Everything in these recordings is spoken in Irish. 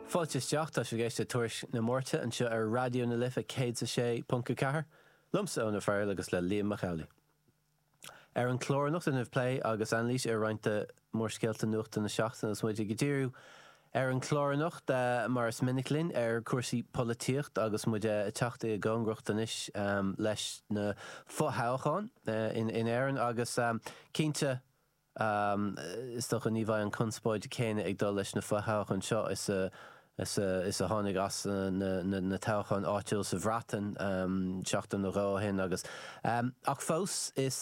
Fáilte isteach, tá sibh ag éisteacht le Tuairisc na Máirte anseo ar Raidió na Life 106.4, liomsa Eoin Ó Fearghail agus le Liam Mac Amhlaigh. Ar an chlár anocht déanfaimid plé agus anailís ar roinnt de mhórscéalta nuachta na seachtaine agus muid ag díriú ar an chlár anocht, mar is minic linn, ar chúrsaí polaitíochta agus muid ag teacht i gcóngaracht anois leis na fothoghcháin in Éirinn agus cinnte, Is dócha ní bheidh an conspóid chéanna ag dul leis na fo-thoghcháin seo is a tháinig as na toghcháin áitiúil sa Bhreatain seachtain nó dhó ó shin agus ach fós is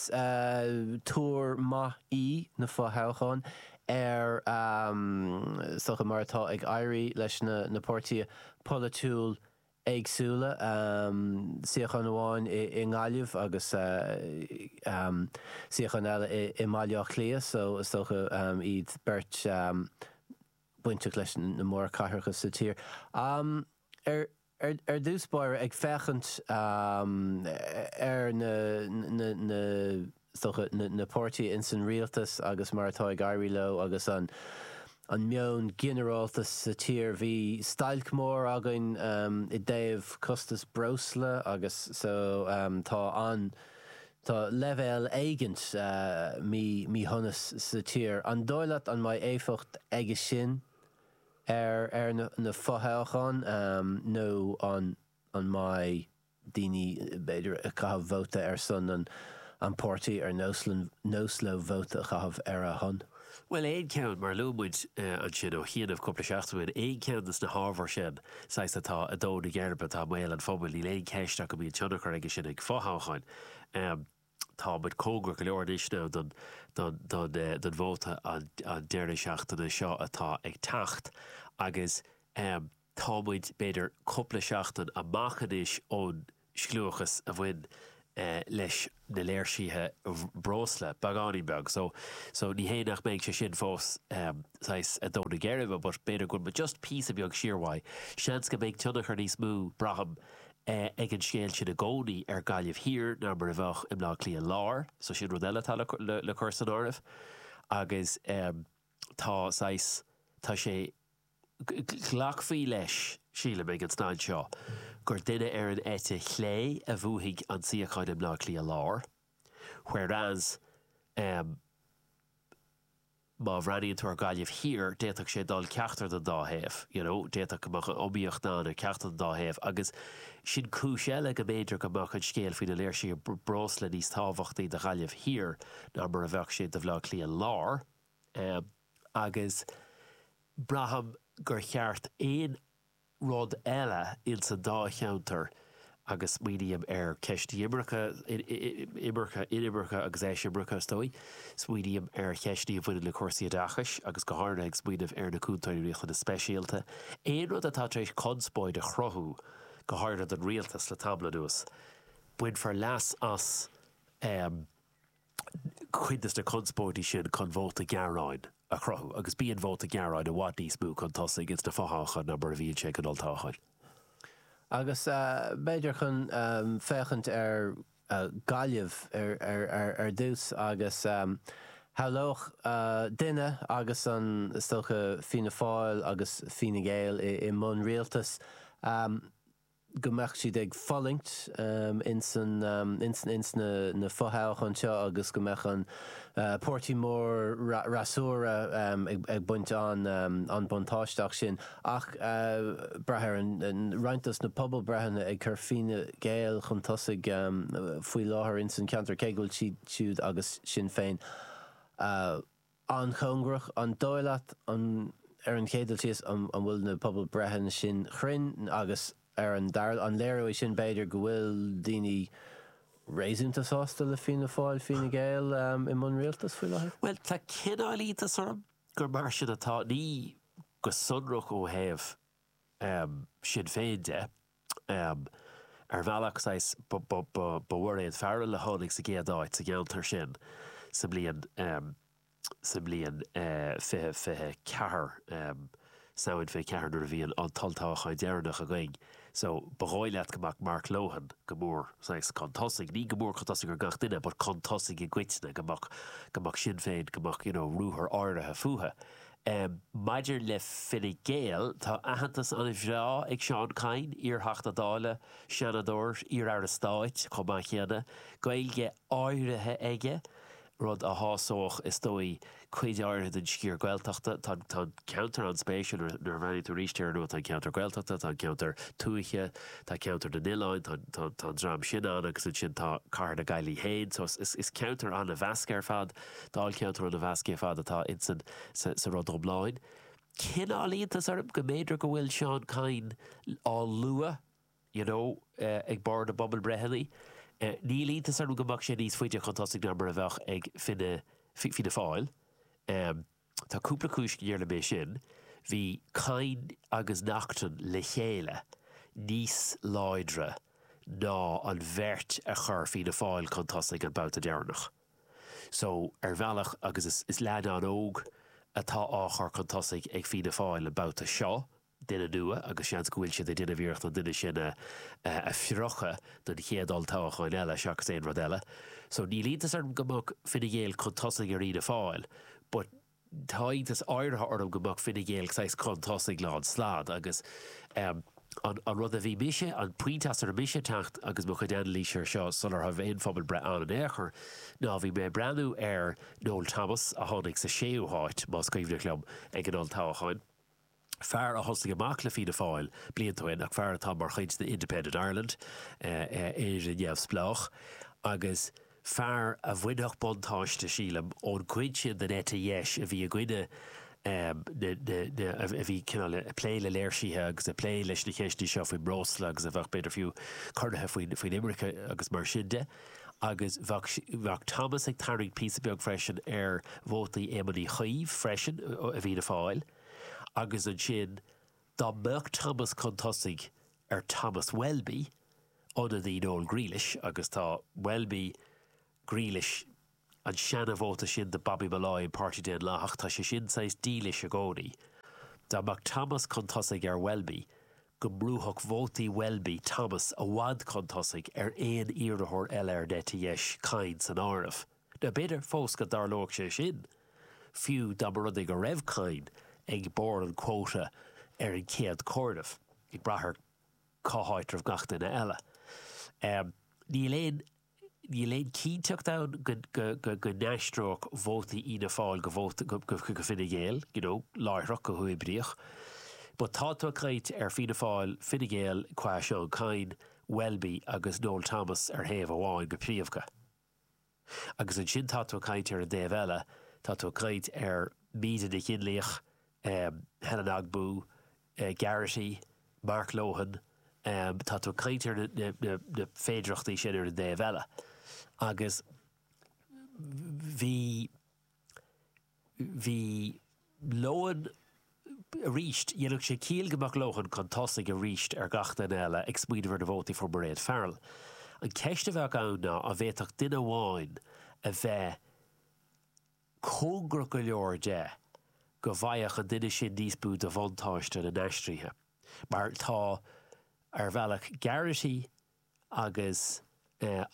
tuar maith í na fo-thoghcháin ar, is dócha, mar atá ag éirí leis na páirtithe polaitiúil éagsúla, suíochán amháin i nGaillimh agus suíochán eile i mBaile Átha Cliath so is dócha iad a bheith bainteach leis na mór cathracha sa tír. Ar dtús báire, ag féachaint ar na. is dócha, na páirtithe ins an rialtas agus mar atá ag éirí leo agus an meon ginearálta sa tír. Bhí stailc mór againn i dtaobh costas breosla agus so tá an, tá leibhéal éigint míshonais sa tír. An dóigh leat go mbeidh éifeacht aige sin ar na fothoghcháin nó an mbeidh? daoine b'fhéidir ag caitheamh vóta ar son an páirtí ar nós leo vóta a chaitheamh ar a shon. Bhuel aon cheann, mar a luaigh muid ansin ó chianaibh cúpla seachtain ó shin, aon cheann de na hábhair sin, saghas atá i ndon na geirbe, atá i mbéal an phobail, níl aon cheist ach go mbíonn tionchar aige sin ar fothoghcháin. Tá muid cóngarach go leor anois now don vóta an deireadh seachtaine seo atá ag teacht agus, Tá muid, b'fhéidir, cúpla seachtain amach anois ón scliúchas a bhain leis na léirsithe breosla, beagáinín beag, so, so ní hé nach mbeidh sé sin fós saghas i ndon na geirbe but b'fhéidir go bhfuil muid just píosa beag siar uaidh. Seans go mbeidh tionchar níos mó, braithim, ag an scéal sin i gcónaí ar Ghaillimh Thiar ná mar a bheadh i mBleá Cliath Láir, so sin rud eile atá le cur san áireamh agus tá saghas, tá sé, Glacfaí leis, sílim, ag an staid seo gur duine ar an eite chlé a bhuafaidh an suíochán i mBleá Cliath Láir whereas má bhreathnaíonn tú ar Ghaillimh Thiar d'fhéadfadh sé dul ceachtar den dá thaobh, you know, d'fhéadfadh go mbeadh an iomaíocht ann ar ceachtar den dá thaobh agus sin cúis eile go mb'fhéidir go mbeadh an scéal faoi na léirsithe breosla níos tábhachtaí do Ghaillimh Thiar ná mar a bheadh sé do Bhleá Cliath Láir. agus braithim gur chéard aon rud eile ins an dá cheantar agus smaoiním ar cheist imirce, imirce, inimirce agus eisimirce is dóigh, smaoiním ar cheisteanna a bhaineann le cúrsaí oideachais agus go háirithe ag smaoineamh ar na cúntóirí riachtanas speisialta, aon rud atá tar éis conspóid a chruthú, go háirithe don rialtas le tamall anuas, bainfear leas as. cuid de na conspóidí sin chun vóta gearáin a chruthú agus bíonn vóta gearáin i bhfad níos mó chun tosaigh ins na fothoghcháin ná mar a bhíonn sé ag an olltoghchán. Agus b'fhéidir chun féachaint ar Ghaillimh ar dtús agus shamhlódh duine agus is dócha Fianna Fáil agus Fine Gael i mbun rialtais, go mbeadh siad ag fulaingt ins na fothoghcháin seo agus go mbeadh an páirtí mór freasúra ag baint an-buntáiste as sin. Ach braitheann roinnt dos na pobalbhreitheanna ag cur Fine Gael chun tosaigh faoi láthair ins an ceantar cé go bhfuil siad siúd agus Sinn Féin an-chóngarach, an dóigh leat ar an chéad dul síos an bhfuil na pobalbhreitheanna sin chruinn agus ar an dara, an léireoidh sin b'fhéidir go bhfuil daoine réasúnta sásta le Fianna Fáil, Fine Gael i mbun rialtas faoi láthair? Bhuel, tá cineál iontais orm gur mar sin atá, ní go sonrach ó thaobh Shinn Féin de. Ar bhealach, saghas, ba í Mairéad Farrell a tháinig sa gcéad áit sa gceantar sin sa mbliain, sa mbliain 2024, Samhain 24 nuair a bhí an t-olltoghchán deireanach againn. So, ba dhóigh leat go mbeadh Mark Lohan go mór, saghas, chun tosaigh, ní go mór chun tosaigh ar gach duine but chun tosaigh i gcoitinne, go mbeadh, go mbeadh Sinn Féin, go mbeadh, you know, ruathar áirithe fúthu. Um Maidir le Fine Gael, tá aitheantas an-bhreá ag Seán Kyne, iar-Theachta Dála, Seanadóir, iar-Aire Stáit chomh maith céanna, Gaeilge áirithe aige, rud a shásódh is dóigh cuid áirithe den sciar Gaeltachta. Tá an ceantar an-spéisiúil nuair a bhreathnaíonn tú arís air, you know tá an ceantar Gaeltachta, tá an ceantar tuaithe, tá ceantar na n-oileáin, tá an dream sin ann agus ansin tá cathair na Gaillimhe féin. So is ceantar an-mheasctha ar fad. Dáilcheantar an-mheasctha ar fad atá insan sa rud iomlán. Cineál iontas orm go mb'fhéidir go bhfuil Seán Kyne á lua you know ag barr na bpobalbhreitheanna. Níl iontas orm go mbeadh sé níos faide chun tosaigh ná mar a bheadh ag Fine Fianna Fáil. Tá cúpla cúis go ndéarfadh mé sin. Bhí Kyne agus Naughton le chéile níos láidre ná an bheirt a chuir Fianna Fáil chun tosaigh an babhta deireanach. So, ar bhealach, agus is is leaid an-óg atá á chur chun tosaigh ag Fianna Fáil an babhta seo, duine nua agus seans go bhfuil siad ag déanamh iarracht an duine sin a a phriocadh don chéad olltoghchán eile seachas aon rud eile. So, níl iontas orm go mbeadh Fine Gael chun tosaigh ar Fhianna Fáil but, tá iontas áirithe orm go mbeadh Fine Gael saghas chun tosaigh lánstad agus an rud a bhí mise, an pointe as a raibh mise ag teacht agus mo chuid anailíse ar seo sular raibh aon phobalbhreith ann in aon chor, ná bhí mé ag breathnú ar Noel Thomas a tháinig sa séú háit, más cuimhneach liom, ag an olltoghchán. fear a thosaigh amach le Fianna Fáil blianta ó shin ach fear atá mar chuid de Independent Ireland, Éire Neamhspleách, agus fear a bhainfeadh buntáiste, sílim, ón gcuid sin den eite dheis a bhí i gcoinne na, a bhí cineál ag plé le léirsithe agus ag plé leis na cheisteanna seo faoin mbreosla agus a bheadh b'fhéidir fiú corraithe faoin imirce agus mar sin de. Agus bheadh Thomas ag tarraingt píosa beag freisin ar vótaí Éamoin Uí Chuív freisin i bhFianna Fáil. agus ansin dá mbeadh Thomas chun tosaigh ar Thomas Welby, ionadaí Noel Grealish, agus tá Welby, Grealish, an seana-vóta sin do Bobby Molloy an Páirtí Daonlathach, tá sé sin saghas dílis i gcónaí, dá mbeadh Thomas chun tosaigh ar Welby go mbrúfadh vótaí Welby Thomas i bhfad chun tosaigh ar aon iarrthóir eile ar an eite dheis, Kyne san áireamh. Nó b'fhéidir fós go dtarlóidh sé sin, fiú dá mba rud é go raibh Kyne ag barr an quota ar an chéad chomhaireamh, ag brath ar cá háit a raibh gach duine eile. Níl aon níl aon chinnteacht ann go go n-aistreodh vótaí Fhianna Fáil go vóta go Fine Gael, you know, láithreach, go huathoibríoch. But tá tú ag caint ar Fianna Fáil, Fine Gael qua Seán Kyne, Welby agus Noel Thomas ar thaobh amháin go príomha. Agus ansin tá tú ag caint ar an dtaobh eile, tá tú ag caint ar Míde Nic Fhionnlaoich, Helen Ogbu, Garrity, Mark Lohan, tá tú ag caint ar na féidearthachtaí sin ar an dtaobh eile agus bhí, bhí Lohan arís. Dhéanfadh sé ciall go mbeadh Lohan chun tosaigh arís ar gach duine eile, ag smaoineamh ar na vótaí a fuair Mairéad Farrell. An cheist a bheadh ann ná an bhféadfadh duine amháin a bheith cóngarach go leor de go bhfaigheadh an duine sin níos mó de bhuntáiste na n-aistrithe, mar atá ar bhealach Garrity, agus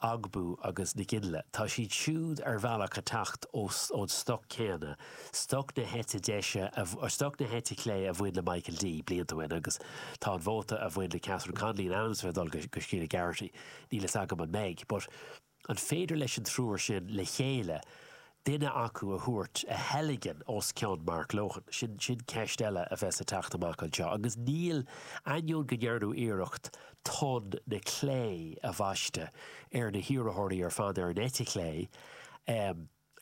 Ogbu agus Nic Fhionnlaoich. Tá siad siúd ar bhealach ag teacht ón stoc céanna, stoc na heite deise, stoc na heite clé a bhain le Michael D. blianta ó shin agus tá an vóta a bhain le Catherine Connolly in ainm is a bheith ag dul go Sheila Garrity. Níl fhios agam an mbeidh. But An féidir leis an triúr sin le chéile duine acu a thabhairt, a theilgean os cionn Mark Lohan? Sin ceist eile a bheas ag teacht amach anseo agus níl, ainneoin go ndearnadh iarracht tonn na clé a bhaisteadh ar na hiarrthóirí ar fad ar an eite chlé.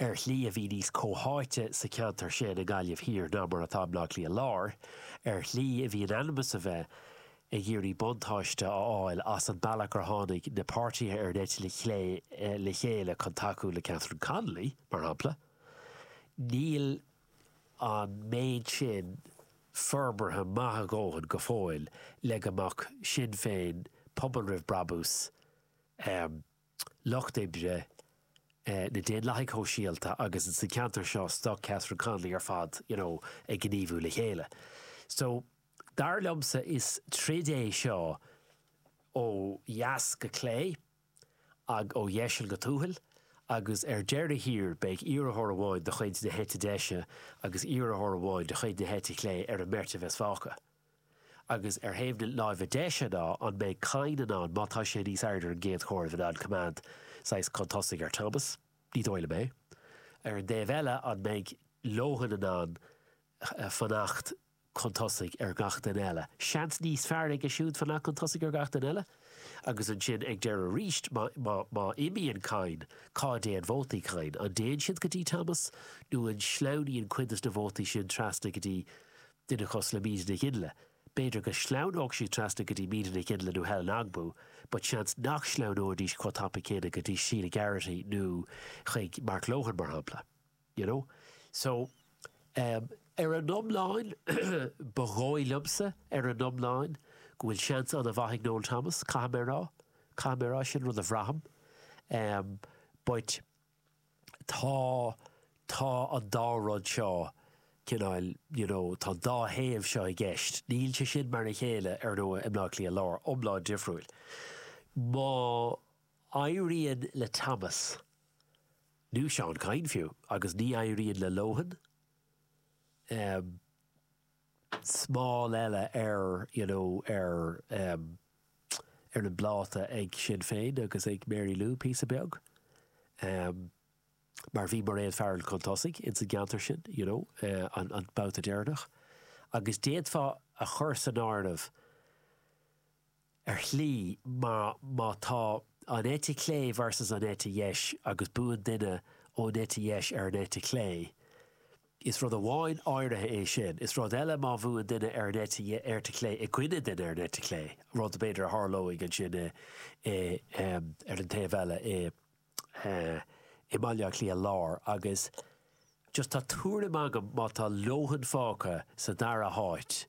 Ar shlí a bhí níos comhtháite sa cheantar sin i nGaillimh Thiar ná mar atá i mBleá Cliath Láir. Ar shlí a bhí in ainm's a bheith ag iarraidh buntáiste a fháil as an mbealach ar tháinig na páirtithe ar an eite chlé le chéile chun tacú le Catherine Connolly, mar shampla, níl an méid sin forbartha maith a dóthain go fóill le go mbeadh Sinn Féin, Pobal Roimh Brabús, Lucht Oibre, na Daonlathaigh Shóisialta agus sa cheantar seo stoc Catherine Connolly ar fad you know ag gníomhú le chéile. So, dar liomsa is troid é seo ó dheas go clé ó dheiseal go tuathal agus ar deireadh thiar beidh iarrthóir amháin de chuid na heite deise agus iarrthóir amháin de chuid na heite clé ar an mbeirt a bheas fágtha. Agus ar thaobh na láimhe deise ná an mbeidh Kyne in ann, má tá sé níos airde ar an gcéad chomhaireamh, in ann coimeád saghas chun tosaigh ar Thomas? Ní dóigh liom é. Ar an dtaobh eile, an mbeidh Lohan in ann fanacht chun tosaigh ar gach duine eile? Seans níos fearr aige siúd fanacht chun tosaigh ar gach duine eile? Agus ansin ag deireadh arís, má imíonn Kyne, cá dtéann vótaí Kyne? An dtéann siad go dtí Thomas nó an sleamhnaíonn cuid de na vótaí sin trasna go dtí duine cosúil le Míde Nic Fhionnlaoich. B'fhéidir go sleamhnódh siad trasna go dtí Míde Nic Fhionnlaoich nó Helen Ogbu but seans nach sleamhnóidís chomh tapaidh céanna go dtí Sheila Garrity nó chuig Mark Lohan mar shampla. You know? So, em, ar an iomlán, ba dhóigh liomsa, ar an iomlán, go bhfuil seans an-mhaith ag Noel Thomas, caithfidh mé a rá. Caithfidh mé a rá, sin rud a bhraithim. Em, but. tá, tá an dá rud seo, cineál, you know, tá an dá thaobh seo i gceist. Níl sé sin mar a chéile, ar ndóigh, i mBleá Cliath Láir, iomlán difriúil. Má éiríonn le Thomas, nó Seán Kyne fiú, agus ní éiríonn le Lohan, eh, smál eile ar you know ar em ar an bpláta ag Sinn Féin agus ag Mary Lou píosa beag em mar bhí Mairéad Farrell chun tosaigh ins an gceantar sin you know eh an babhta deireanach agus d'fhéadfá a chur san áireamh ar shlí, mar má tá an eite chlé versus an eite dheis agus buann duine ón eite dheis ar an eite chlé, is rud amháin áirithe é sin. Is rud eile má bhuann duine ar an eite dheis chlé i gcoinne duine ar an eite chlé, rud b'fhéidir a tharlóidh ansin ar an taobh eile i. eh i mBaile Átha Cliath Lár agus just tá tuairim agam má tá Lohan fágtha sa dara háit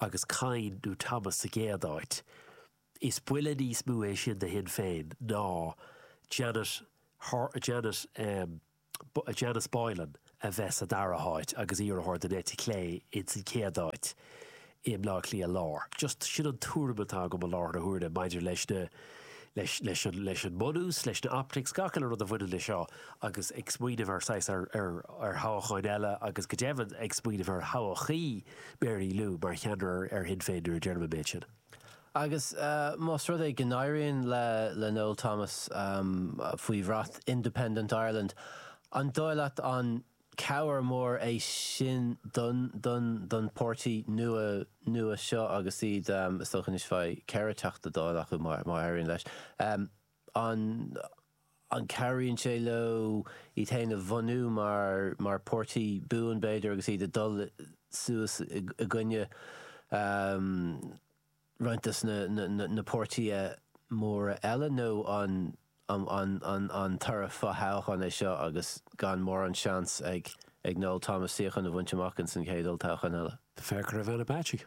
agus Kyne nó Thomas sa gcéad áit, is buille níos mó é sin do Shinn Féin ná Janet, Janet em Janice Boylan. a bheith sa dara háit agus iarrthóir den eite chlé ins an chéad áit i mBleá Cliath Lár. Just sin an tuairim atá agam i láthair na huaire maidir leis na, leis, leis an, leis an mbunús, leis na optics, gach uile rud a bhaineann le seo agus ag smaoineamh ar saghas, ar, ar, ar thoghcháin eile agus go deimhin ag smaoineamh ar thodhchaí Mary Lou mar cheannaire ar Shinn Féin nuair a deirim an méid sin. Agus más rud é go n-éiríonn le Noel Thomas faoi bhrat Independent Ireland, an dóigh leat an cabhair mór é sin don don pháirtí nua nua seo agus iad, is dócha anois bheidh ceithre Teachta Dála acu má éiríonn leis, An an cabhraíonn sé leo iad féin a bhunú mar mar páirtí buan b'fhéidir agus iad ag dul suas i gcoinne roinnt de na na na páirtí móra eile nó an an an an toradh fo-thoghcháin é seo agus gan mórán seans ag ag Noel Thomas suíochán a bhaint amach ins an chéad olltoghchán eile? Féach ar Ivana Bacik.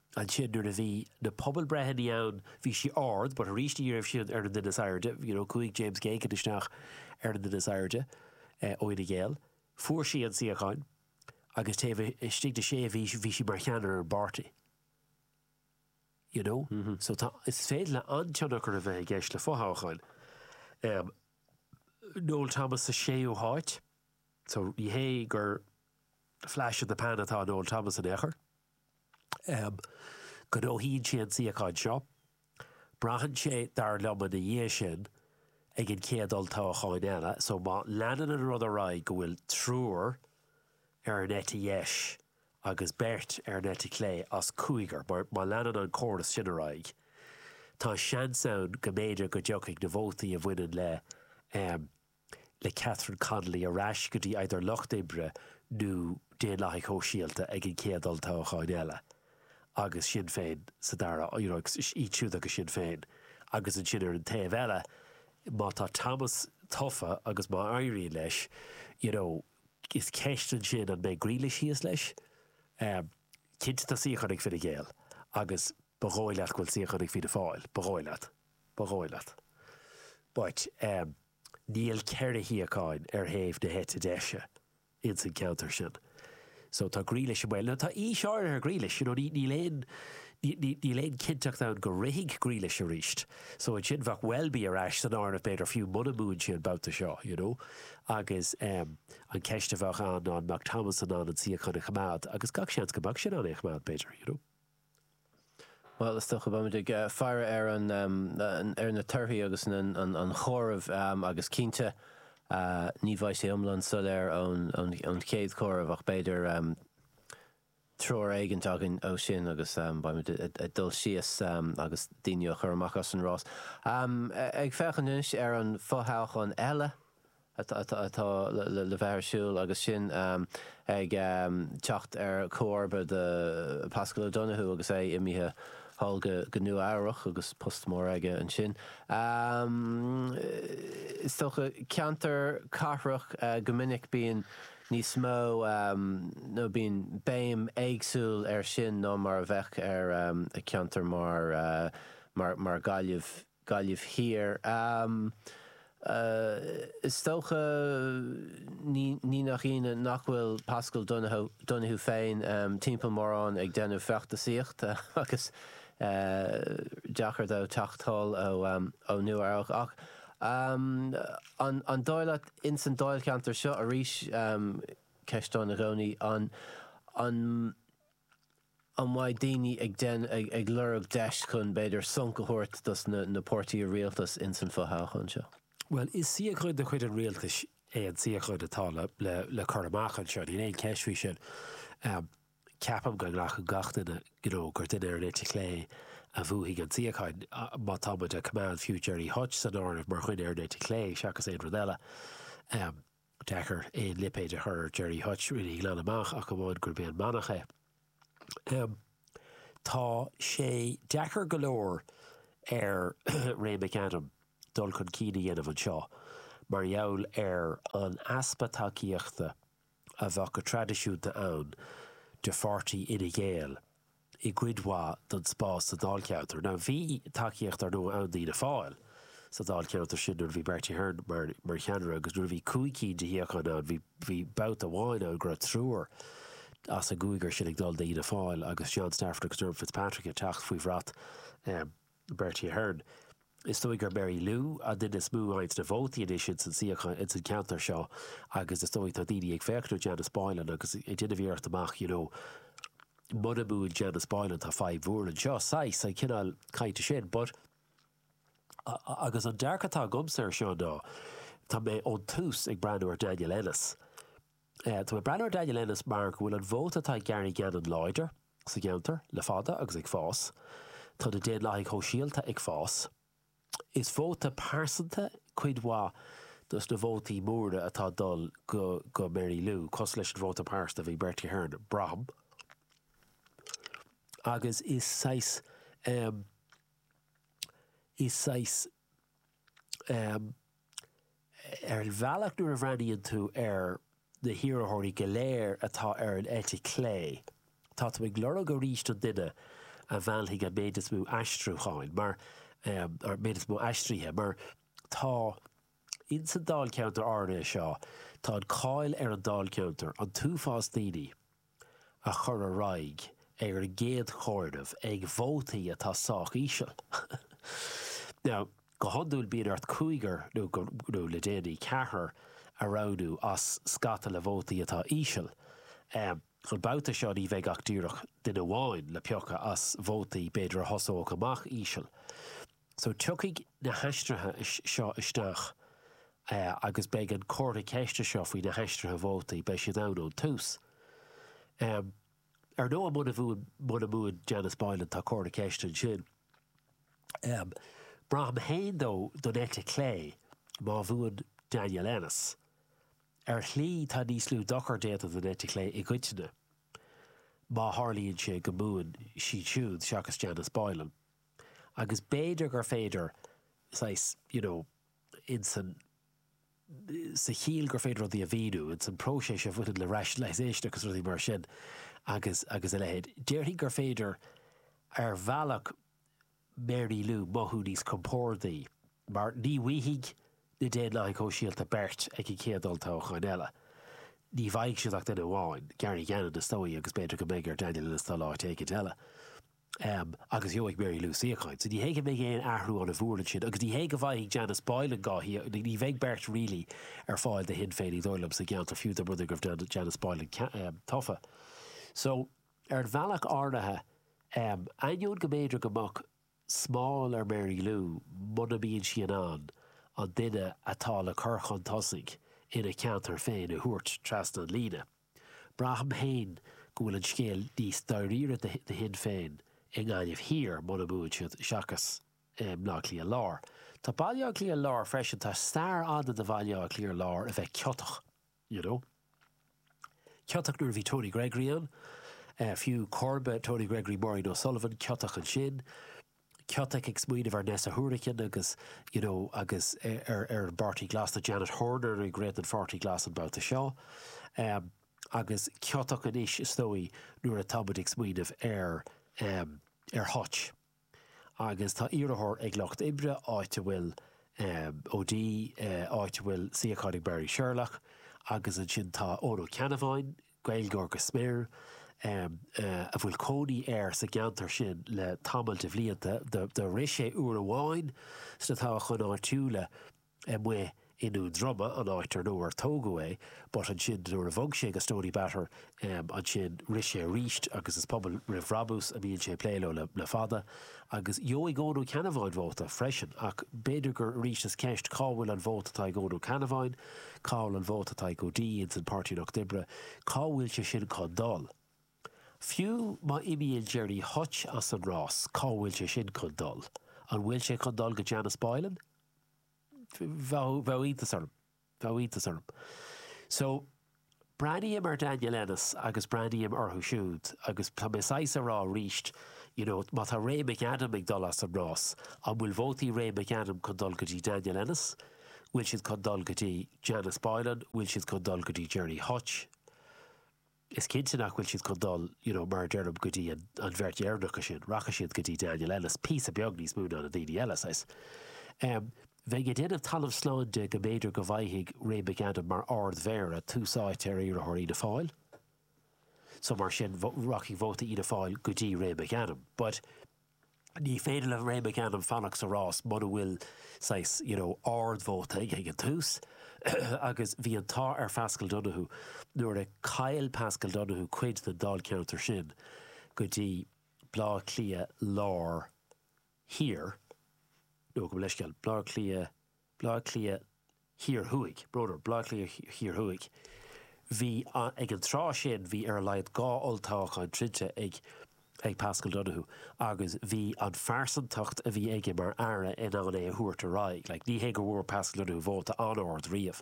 Ansin nuair a bhí na pobalbreitheanna ann bhí sí ard but arís ní raibh sí ar an duine is airde you know chuaigh James Geoghegan isteach ar an duine is airde ó Fhine Gael fuair sí an suíochán agus taobh istigh de sé mhí bhí sí mar cheannaire ar an bpáirtí you know so tá is féidir le an-tionchar a bheith i gceist le fothoghcháin um, Noel Thomas sa séú háit so ní hé gur flash in the pan atá Noel Thomas in aon chor. Gnóthaíonn sé an suíochán seo. Braitheann sé, dar liom, ina dhiaidh sin, ag an chéad olltoghchán eile. So má leanann an rud ar aghaidh go bhfuil triúr ar an eite dheis agus beirt ar an eite chlé as cúigear, má leanann an córas sin ar aghaidh, tá seans ann go mb'fhéidir go dtiocfaidh na vótaí a bhaineann le le Catherine Connolly ar ais go dtí either Lucht Oibre nó Daonlathaigh Shóisialta ag an gcéad olltoghchán eile agus Sinn Féin sa dara you know iad siúd agus Sinn Féin agus ansin ar an taobh eile má tá Thomas tofa agus má éiríonn leis you know is ceist ansin an mbeidh Grealish thíos leis? Em cinnte tá suíochán ag Fine Gael agus ba dhóigh leat go bhfuil suíochán ag Fianna Fáil ba dhóigh leat. Ba dhóigh leat. But níl ceithre shuíochán ar thaobh na heite deise ins an ceantar sin. So tá Grealish i mbaol. Now tá aois áirithe ar Grealish, you know, ní, níl aon, ní, níl aon cinnteacht ann go rithfidh Grealish arís. So ansin bheadh Welby ar ais san áireamh b'fhéidir fiú muna mbuann sé an babhta seo, you know. Agus an ceist a bheadh ann an mbeadh Thomas in ann an suíochán a choimeád agus gach seans go mbeadh sé in ann é a choimeád b'fhéidir, you know. Bhuel, is dócha go mbeimid ag faire ar na torthaí agus an comhaireamh agus cinnte ní bheidh sé iomlán soiléir ón chéad chomhaireamh ach b'fhéidir treoir éigin againn ó sin agus beimid ag dul síos agus daoine a chur amach as an rás. Ag féachaint anois ar an fothoghchán eile, atá le bheith ar siúl agus sin ag teacht ar chomharba do Paschal Donohoe agus é imithe thall go Nua Eabhrach agus post mór aige ansin, is dócha. Ceantar cathrach go minic bíonn níos mó nó bíonn béim éagsúil ar sin ná mar a bheadh ar cheantar mar mar Gaillimh. Gaillimh Thiar. Is dócha ní nach ionadh nach bhfuil Paschal Donohoe féin timpeall mórán ag déanamh feachtasaíochta agus deacair dó teacht anall ó Nua-Eabhrac. Ach an dóigh leat, ins an dáilcheantar seo arís, ceist ann i gcónaí, an. An mbeidh daoine ag ag lorg deis chun b'fhéidir sonc a thabhairt dos na páirtithe rialtais ins an fo-thoghchán seo? Bhuel, is suíochán de chuid an rialtais é an suíochán atá le cur amach anseo. Níl aon cheist faoi sin. Ceapaim go nglacann gach duine go gur duine ar an eite chlé a bhuafaidh an suíochán, má tá muid ag coimeád fiú Gerry Hutch san áireamh mar dhuine ar an eite chlé, seachas aon rud eile. deacair aon lipéad a chur ar Gerry Hutch really glan amach ach amháin gurb é an manach é. Em tá sé deacair go leor ar Ray McAdam dul chun cinn a dhéanamh anseo mar gheall ar an easpa tacaíochta a bheadh go traidisiúnta ann de pháirtí Fhine Gael. i gcuid mhaith den spás sa dáilcheantar. Now bhí tacaíocht, ar ndóigh, ann d'Fhianna Fáil sa dáilcheantar sin nuair a bhí Bertie Ahern mar cheannaire agus nuair a bhí cúig cinn de shuíocháin ann bhí babhta amháin ann go raibh triúr as an gcúigear sin ag dul d'Fhianna Fáil agus John Stafford agus Dermot Fitzpatrick ag teacht faoi bhrat Bertie Ahern. Is dóigh gur Mary Lou an duine is mó a fhaigheanns na vótaí anois ins an suíochán, ins an ceantar seo agus is dóigh tá daoine ag féachaint ar Janice Boylan agus ag déanamh iarracht a rá you know mura mbuann Janice Boylan tá fadhb mhór anseo, saghas, sin an cineál cainte sin but agus an dearcadh atá agamsa ar seo ná tá mé ón tús ag breathnú ar Daniel Ennis. Tá mé ag breathnú ar Daniel Ennis mar go bhfuil an vóta atá ag Gary Gannon láidir, sa gceantar le fada agus ag fás. Tá na Daonlathaigh Shóisialta ag fás. Is vóta pearsanta cuid mhaith dos na vótaí móra atá ag dul go go Mary Lou, cosúil leis an vóta pearsanta a bhí ag Bertie Ahern, braithim, agus is saghas, em, is saghas Ar an bhealach nuair a bhreathnaíonn tú ar na hiarrthóirí go léir atá ar an eite chlé táimid ag lorg arís an duine a mheallfaidh an méid is mó aistriúcháin mar, an méid is mó aistrithe mar tá ins an dáilcheantar áirithe seo. Tá an cáil ar an dáilcheantar, an t-uafás daoine. a chur ar aghaidh ar an gcéad chomhaireamh ag vótaí atá sách íseal. Now, go hiondúil bíonn ort cúigear nó, nó le déanaí, ceathrar a roghnú as scata le vótaí atá íseal. An babhta seo ní bheidh ach díreach duine amháin le piocadh as vótaí b'fhéidir a thosódh amach íseal. So tiocfaidh na haistrithe seo isteach agus beidh an comhartha ceiste seo faoi na haistrithe vótaí, beidh siad ann ón tús. Ar ndóigh, muna mbuann Janice Boylan, tá comhartha ceiste ansin. Braithim féin dó don eite chlé má bhuann Daniel Ennis. Ar shlí, tá níos lú dochar déanta don eite chlé i gcoitinne má tharlaíonn sé go mbuann siad siúd seachas Janice Boylan. agus b'fhéidir gur féidir saghas, you know, insan, sa chiall gur féidir rudaí a mhíniú, insan próiseas a bhaineann le rationalisation agus rudaí mar sin agus, agus a leithéid. Déarfainn gur féidir ar bhealach Mary Lou mothú níos compórdaí mar ní bhfaighidh na Daonlathaigh Shóisialta beirt ag an gcéad olltoghchán eile. Ní bhfaighidh siad ach duine amháin, Gary Gannon is dóigh agus b'fhéidir go mbeidh ar Daniel Ennis dul áit éicint eile. Ehm, agus gheobhaidh Mary Lou suíochán. So ní hé go mbeidh aon athrú an-mhór ansin agus ní hé go bhfaighidh Janice Boylan dhá shuíochán, ní bheidh beirt really ar fáil do Shinn Féin, ní dóigh liom, sa gceantar, fiú dá mba rud é go raibh Janice Boylan tofa. So, ar an bhealach áirithe, em, ainneoin go mb'fhéidir go mbeadh smál ar Mary Lou muna mbíonn sí in ann an duine atá le cur chun tosaigh ina ceantar féin a thabhairt trasna an líne, Braithim féin go bhfuil an scéal níos dáiríre do Shinn Féin i nGaillimh Thiar muna mbuann siad seachas i mBleá Cliath Lár. Tá Baile Átha Cliath Lár freisin, tá stair fhada do Bhaile Átha Cliath Lár a bheith ciotach, you know. Ciotach nuair a bhí Tony Gregory ann, fiú, comharba Tony Gregory, Maureen O'Sullivan, ciotach ansin. Ciotach ag smaoineamh ar Neasa Hourican agus you know agus ar ar an bPáirtí Glas tá Janet Horner ag rith don Pháirtí Glas an babhta seo em agus ciotach anois is dóigh nuair atá muid ag smaoineamh ar em ar Hutch agus tá iarrthóir ag Lucht Oibre áit a bhfuil em O'Dea eh áit a bhfuil suíochán ag Marie Sherlock agus ansin tá Eoghan Ó Ceannabháin Gaeilgeoir go smior, a bhfuil cónaí air sa gceantar sin le tamall de bhlianta. Do rith sé uair amháin sna toghcháin áitiúla amuigh i nDún Droma, an áit ar ar tógadh é, but ansin nuair a bhog sé go Stoneybatter ansin rith sé arís agus is Pobal Roimh Bhrabús a mbíonn sé ag plé leo le fada. Agus gheobhaidh Eoghan Ó Ceannabháin vóta freisin ach b'fhéidir gur arís is ceist cá bhfuil an vóta atá ag Eoghan Ó Ceannabháin? Cá bhfuil an vóta atá ag O'Dea ins an Páirtí an Lucht Oibre? Cá bhfuil sé sin chun dul? Fiú má imíonn Gerry Hutch as an rás, cá bhfuil sé sin chun dul? An bhfuil sé chun dul go Janice Boylan? Bheadh iontas orm. Bheadh iontas orm. So, Breathnaím ar Daniel Ennis agus breathnaím orthu siúd agus tá mé saghas a rá arís, you know, má tá Ray McAdam ag dul as an rás, an bhfuil vótaí Ray McAdam chun dul go dtí Daniel Ennis? Bhfuil siad chun dul go dtí Janice Boylan? Bhfuil siad chun dul go dtí Gerry Hutch? Is cinnte nach bhfuil siad chun dul, you know, mar a deirim, go dtí an bheirt dheireanacha sin. Rachaidh siad go dtí Daniel Ennis píosa beag níos mó ná na daoine eile, saghas. bheinn ag déanamh talamh slán de go mb'fhéidir go bhfaighidh Ray McAdam mar Ardmhéara tús áite ar iarrthóir Fhianna Fáil so mar sin rachaidh vóta Fhianna Fáil go dtí Ray McAdam but ní féidir le Ray McAdam fanacht sa rás muna bhfuil saghas you know ardvóta aige ag an tús agus bhí an t-ádh ar Phaschal Donohoe nuair a chaill Paschal Donohoe cuid den Dáilcheantar sin go dtí Bleá Cliath Lár Thiar, nó gabh mo leithscéal, Bleá Cliath, Bleá Cliath Thiar Thuaidh, or rather, Bleá Cliath Thiar Thuaidh. Bhí an, ag an tráth sin bhí ar a laghad dhá olltoghchán troidte ag ag Paschal Donohoe agus bhí an phearsantacht a bhí aige mar Aire in ann é a thabhairt ar aghaidh. Like ní hé go bhfuair Paschal Donohoe vóta an-ard riamh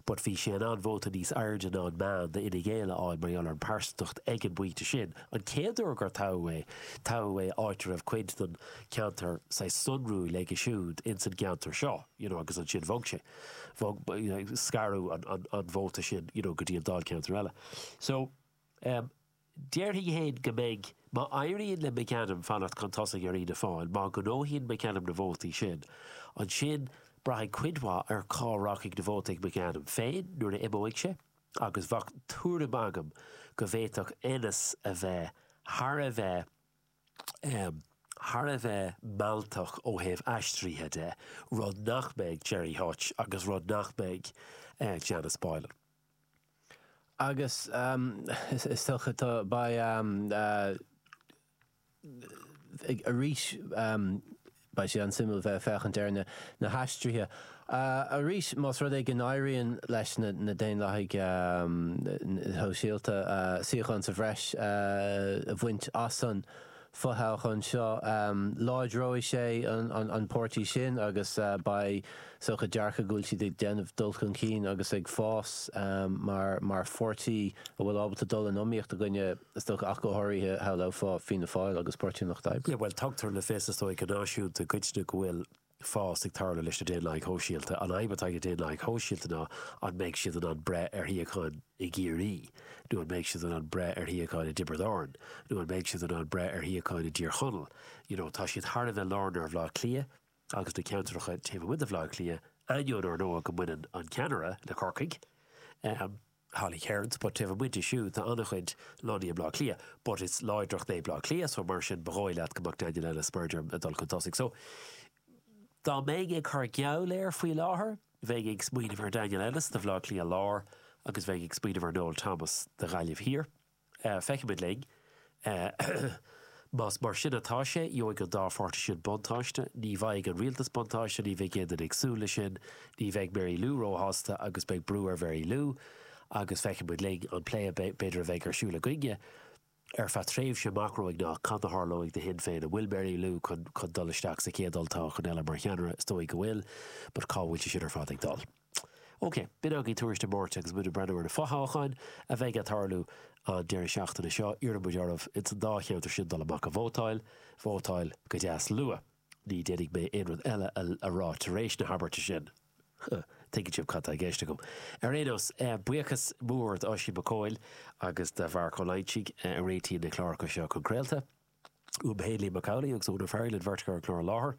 but bhí sé in ann vóta níos airde ná an meán d'Fhine Gael a fháil mar gheall ar an bpearsantacht ag an bpointe sin. An chéad uair gur toghadh é, toghadh é áit a raibh cuid den cheantar saghas sonrúil aige siúd ins an gceantar seo you know agus ansin bhog sé, bhog, scaradh an vóta sin you know go dtí an dáilcheantar eile. So ehm déarfainn fhéin go mbeidh, má éiríonn le McAdam fanacht chun tosaigh ar Fhianna Fáil, má ghnóthaíonn McAdam na vótaí sin, ansin braithfidh cuid mhaith ar cá rachaidh na vóta ag McAdam féin nuair a imeoidh sé, agus bheadh tuairim agam go bhféadfadh Ennis a bheith thar a bheith thar a bheith mealltach ó thaobh aistrithe de, rud nach mbeidh Gerry Hutch agus rud nach mbeidh Janice Boylan. Agus is dócha tá beidh. arís beidh sé an-suimiúil bheith ag féachaint ar na haistrithe. Arís, más rud é go n-éiríonn leis na Daonlathaigh Shóisialta suíochán sa bhreis a bhaint as an fothoghchán seo, láidreoidh sé an páirtí sin agus beidh, is dócha dearcadh go bhfuil siad ag déanamh dul chun cinn agus ag fás mar pháirtí a bhfuil ábalta dul in iomaíocht i gcoinne, is dócha, ach go háirithe shamhlófá Fianna Fáil agus Páirtí an Lucht Oibre. Bhuel, tugtar le fios, is dóigh, go náisiúnta i gcoitinne go bhfuil fás ag tarlú leis na Daonlathaigh Shóisialta. An fhadhb atá ag na Daonlathaigh Shóisialta ná an mbeidh siad in ann breith ar shuíocháin i gCiarraí nó an mbeidh siad in ann breith ar shuíocháin i dTiobraid Árann nó an mbeidh siad in ann breith ar shuíocháin i dTír Chonaill? You know, tá siad thar a bheith lárnach ar Bhaile Átha Cliath. agus na ceantracha taobh amuigh de Bhaile Átha Cliath, ainneoin ár ndóigh go mbaineann an ceannaire le Corcaigh, Holly Cairns, but taobh amuigh di siúd tá an-chuid lonnaithe i mBleá Cliath, but is láidreacht é Bleá Cliath so mar sin ba dhóigh leat go mbeadh Daniel Ennis mar a deirim ag dul chun tosaigh. So dá mbeinn ag cur geall air faoi láthair bheinn ag smaoineamh ar Daniel Ennis do Bhleá Cliath Lár agus bheinn ag smaoineamh ar Noel Thomas do Ghaillimh Thiar. Feicfimid linn. Más mar sin atá sé, gheobhaidh an dá pháirtí sin buntáiste. Ní bhfaighidh an rialtas buntáiste, ní bheidh aon duine ag súil leis sin, ní bheidh Mary Lou róshásta agus beidh brú ar Mhary Lou. Agus feicfimid linn an plé a b'fhéidir a bheidh ar siúl againne ar feadh tréimhse amach romhainn ná cad a tharlóidh do Shinn Féin. An bhfuil Mary Lou chun dul isteach sa chéad olltoghchán eile mar cheannaire? Is dóigh go bhfuil, but cá bhfuil sé sin ar fad ag dul? OK, b'in againn tuairisc na Máirte agus muid ag breathnú ar na fothoghcháin a bheas ag tarlú an deireadh seachtaine seo. Iarrann muid oraibh ins an dá cheantar sin dul amach ag vótáil. Vótáil go deas luath. Ní dhéanfaidh mé aon rud eile a rá tar éis na habairte sin. Tuigeann sibh cad tá i gceist agam. Ar aon nós, buíochas mór d'Oisín Mac Cumhaill agus do Mharc Ó Loingsigh a réitíonn na cláracha seo chun craolta. Uaim Hindley Macauley agus Úna Ferry linn beirt a chuir an clár i láthair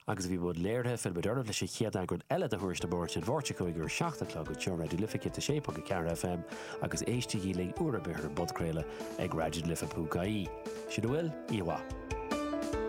agus a bhí i mbun léirithe, fillfidh muid ar ais leis an chéad eagran eile de Thuairisc na Máirt an Mháirt seo chugainn ar a 7 a chlog beo ar Raidió Life 106.4 FM agus éistígí linn uair ar bith ar an bpodchraoladh ag raidiolife.ie. Sin a bhfuil, oíche mhaith.